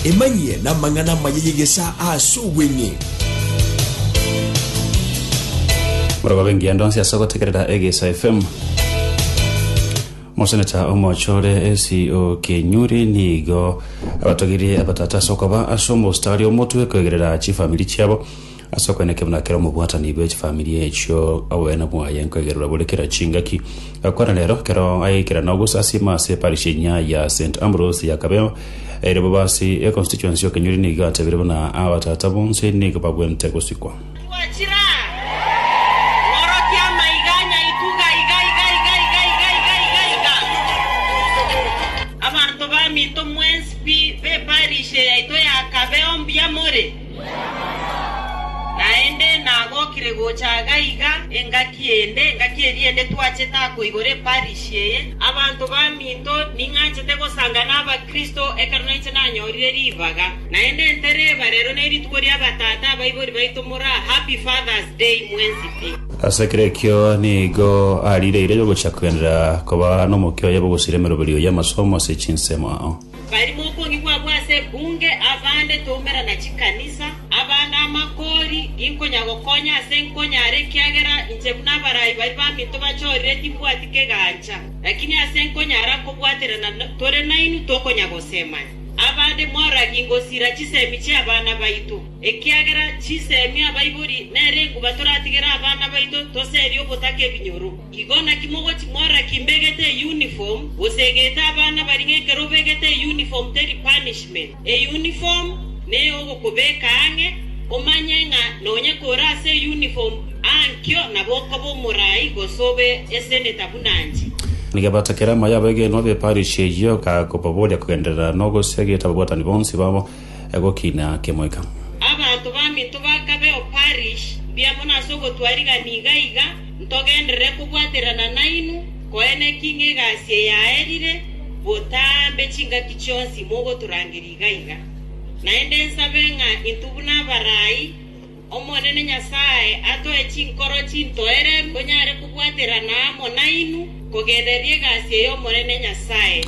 Emanyie namang'ana amaya y'egesaa aase obweng'e. Morogobe engiya ndonsi ase ogotegerera Egeisa FM. Moseneta omochore esi okenyuri nigo abatogirie abatata ase okoba ase omostari omotwe koegerera chifamiri chiabo Ase okoenekio buna kera omobwatani bwe chifamiri echio, obogene bwaye nkoigererwa bore kera chingaki. Gakwana rero, kero ayeikera nogosasiima ase Parish enyia ya St. Ambrose ya Kabeo, ere bobasi e Constituency y'Okenyori nigo atebire buna abatata bonsi nigo babwente gosikwa. Naende nagokire gocha iga na iga, engaki ende, engaki eria ende twachete ako igoro eparish eye. Abanto baminto, ning'anchete gosanga n'Abakristo ekero nainche nanyorire ribaga. Naende ntereba, rero nerituko ri'abatata abaibori baito more aa, Happy Father's Day mwensi pi. Ase ekero ekio nigo ariire eira yogochia kogenderera koba nomokia oye bw'ogosiria emeroberio y'amasomo ase chinsemo. Bari mokong'u kwabo ase ebunge, abande toumerana chikanisa, abande amakori, ginkonya gokonya ase nkonyara ekiagera inche buna abarai baria baminto bachorire timbwati kegancha. Lakini ase nkonyara kobwaterana tore nainwe tokonya gosemania. Abande moragie ngosira chisemi chi'abana baito, ekiagera chisemi abaibori nere enguba toratigere abana baito toserie ogotaka ebinyoro. Igo naki mogochi mora ki mbegete euniform, gose egete abana bari ng'ekero obegete euniform teri punishment. Euniform neyogokobeka ang'e, omanye ng'a nonya kore ase euniform ankio nabo okoba omorai gose obe eseneta buna inche. Ngebaata kera moyo abegenwa b'eparish eyio, kagobaboria kogenderera nogosia egete ababwatani bonsi babo. egokina kemoika. Abanto ba Mito bakabeo parish mbuya mono ase ogotwarigania iga iga, ntogenderere kobwaterana nainwe, koene ki ng'egasi eyaerire, botambe chingaki chionsi mogotorangeria iga iga. Naende nsabe ng'a intwe buna abarai, Omonene Nyasae atoe chinkoro chintoereru, tonyare kobwaterana amo nainwe, kogendereria egasi eye Omonene Nyasae.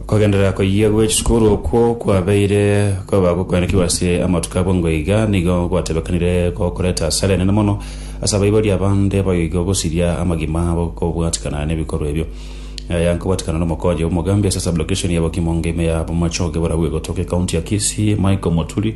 Kogenderera koyia gwe chisukuru okwo kwabeire koba gokoenekigwa ase amatuko abwo ngwo iga nigo gwatebekanire gokoreta asara enene mono ase abaibori abande abayoigwa gosiria amagima abo kobwatikana nebikorwa ebio. Aya nkobwatikana nomokonyi omogambi ase sublocation ya Bokimo ngima ya Bomachoge borabu egotoka ecounty ya Kisii Michael Moturi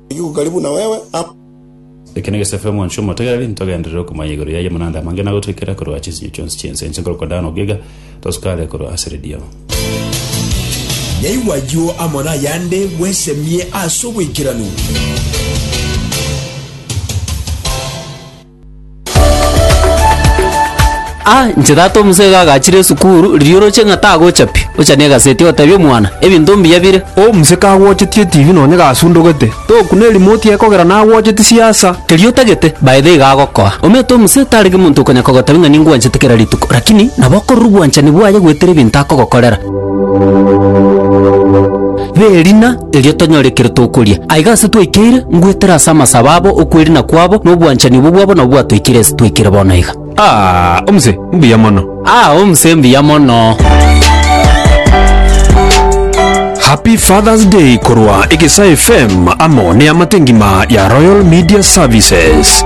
Rigiku kari buna wewe, amo. Eke negesaku amo inche omotegereri, ntogenderere okomanya igoro yaye amanande amange na gotoikera korwa chinsinyo chionsi chi'ense, inche nkorokwa Dan ogiga, tosukare korwa ase ridiama. Yaigwa ayio amo nayande, bwesemie ase obwaikeranu. Ah, inche tata omosege agachire esukuru, riria oroche ng'a tagochapia, ochanie egaseti otebie omwana, Ebinto mbuya bire. O omusee kagwocheti etibi nonye gasundogete, togokuna erimoti yaye kogera nagwocheti siasa. Keria otagete, by the iga agokoa. Omanyete omusee tarenge monto okonya kogotabia ng'a ningwanchete kera rituko, rakini nabo okorora obwanchani bwaye gwetera ebinto akogokorera. B'erina. erio tonyore ekero tokoria. Aiga ase twaikeire, ngwetera ase amasabo abo, okwerina kwabo, na obwanchani obwo bwabo nabwo bwatoikire ase twaikire bono aiga. Aa, omse, mbuya mono. Aa, omse, mbuya mono. Happy Father's Day korwa Egesa FM amo neamate ngima ya Royal Media Services.